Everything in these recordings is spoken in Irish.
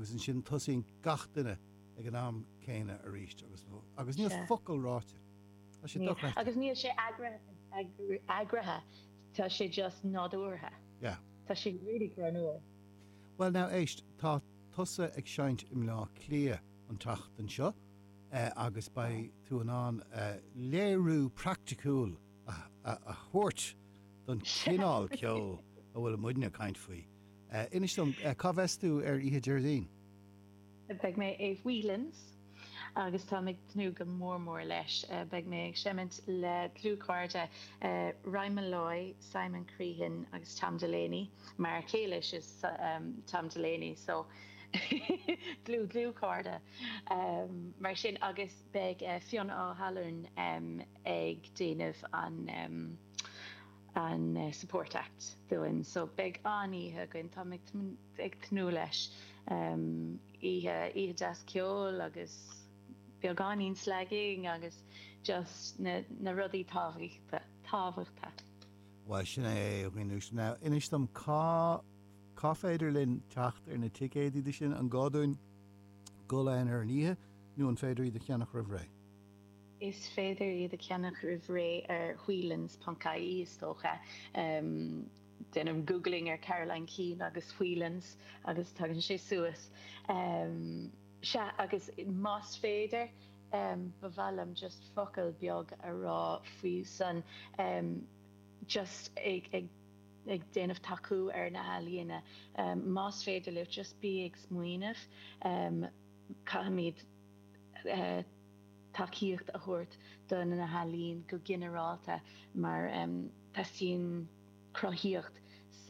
agus ansin tosaíonn gach duine ag an am céanna arís agus nó agus níl focal ráite. Tá sé dochreidte. Agus níl sé eagraithe, tá sé just nádúrtha. Yeah. Tá sé really dáiríre. Bhuel now éist, tá tusa ag seinnt i mBleá Cliath an tseachtain seo agus beidh tú in ann léiriú praiticiúil a thabhairt don chineál ceoil a bhfuil muide ag caint faoi Inis dom, cá bheas tú ar oíche Déardaoin? Beidh mé i Whelan's agus táim ag tnúth go mór mór leis. Beidh mé ag seimint le dlúthchairde, Ryan Molloy, Simon Crehan agus Tom Delaney, m'fhear céile is ea Tom Delaney so dlúth dlúth chairde mar sin agus beidh Fionn Ó hAlmhain ag déanamh an an Support Act dúinn so beidh an-oíche againn, táim ag tnúth leis, oíche deas ceoil agus beagáinín slagging agus just na rudaí tábhachtacha. Bhuel sin é a Aoine sin. Now inis dom cá cá féidir linn teacht ar na ticéidí do sin? An gá dúinn dul ann ar an oíche nó an féidir iad a cheannach roimh ré? Is féidir iad a cheannach roimh ré ar whelans.ie is dócha. Déan googling ar Caroline Keane agus Whelans agus tagann sé suas. Sea, agus más féidir, ba mhaith liom just focal beag a rá faoi san, just ag déanamh tacú ar na healaíona. Más féidir libh, just bí ag smaoineamh, caithfimid. tacaíocht a thabhairt do na healaíona go ginearálta mar teastaíonn cruthaíocht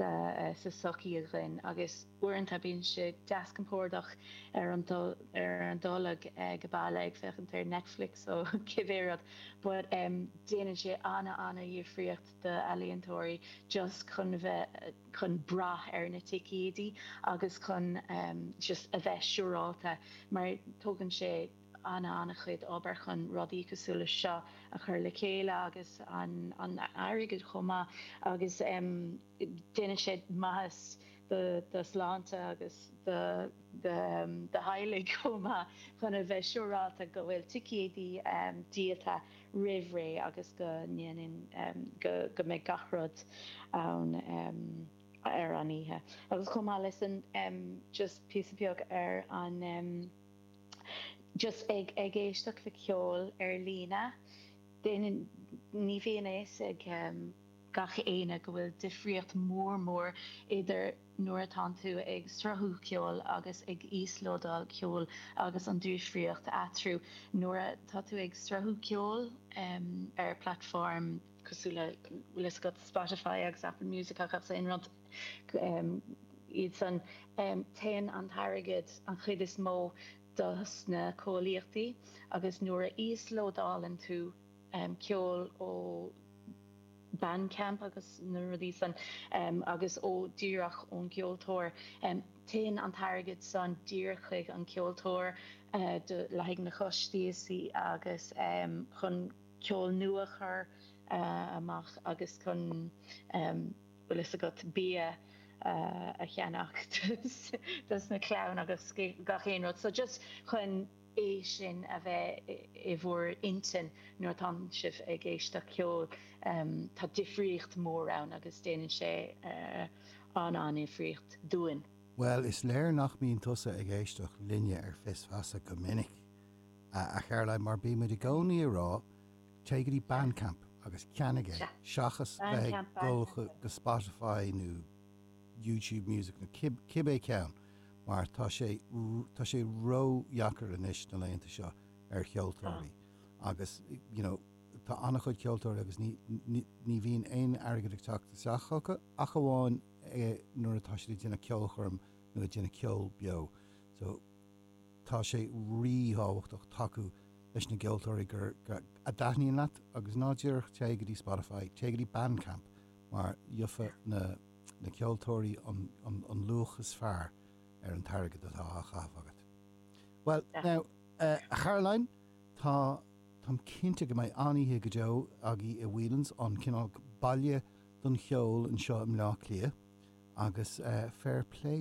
sa tsochaí againn agus uaireanta bíonn sé deas compordach ar an dtolg ag baile ag féachaint ar Netflix nó cibé rud but déanann sé ana ana dhifríocht do ealaíontóirí just chun bheith chun brath ar na ticéidí agus chun just a bheith siúráilte mar tógann sé an-an-chuid obair chun rudaí cosúil leis seo a chur le chéile agus an airgead chomh maith agus déanann sé maitheas do do shláinte agus do do theaghlaigh chomh maith chun a bheith siúráilte go bhfuil ticéidí díolta roimh ré agus go ndéanann go go mbeidh gach rud ann ar an oíche. Agus chomh maith leis san just píosa beag ar an. just ag ag éisteacht le ceol ar líne ní bhíonn fhios ag gach éinne go bhfuil difríocht mhór mhór idir nuair atá tú ag sruthú ceoil agus ag íoslódáil ceoil agus an difríocht eatarthu nuair atá tú ag sruthú ceoil ar platform cosúil le le Spotify agus Apple Music agus aon rud iad san. Téann an t-airgead an chuid is mó do sna comhlachtaí agus nuair a íoslódálann tú ceol ó Bandcamp agus na rudaí san agus ó díreach ón gceoltóir, téann an t-airgead san díreach chuig an ceoltóir do leath na gcostaisí agus chun ceol nua a chur amach agus chun. bhfuil fhios agat, bia a cheannach dos na clann agus gach aon rud so just chun é sin a bheith i bhur intinn nuair atá sibh ag éisteach ceol Tá difríocht mór ann agus déanann sé an-an-dhifríocht dúinn. Bhuel, is léir nach mbíonn tusa ag éisteacht linne ar Fios Feasa go minic, a Charoline, mar bímid i gcónaí ag rá Téigh go dtí Bandcamp agus ceannaigh é seachas bheith ag dul go Spotify nó YouTube Music nó cibé ceann mar tá sé tá sé ródheacair anois na laethanta seo ar cheoltóirí agus you know tá an-chuid ceoltóirí agus ní ní ní bhíonn aon airgead ag teacht isteach acu ach amháin nuair atá siad ag déanamh ceolchoirm nó ag déanamh ceol beo so Tá sé rí-thábhachtach tacú leis na gceoltóirí go dtaitníonn leat agus ná díreach téigh go dtí Spotify, téigh go dtí Bandcamp mar gheobhaidh na ceoltóirí an luach is fearr ar an t-airgead atá á chaitheamh agat. Bhuel, now, a Charoline, táim cinnte go mbeidh an-oíche go deo agaibh i Whelan's, an cineál baile don cheol anseo i mBleá Cliath agus fair play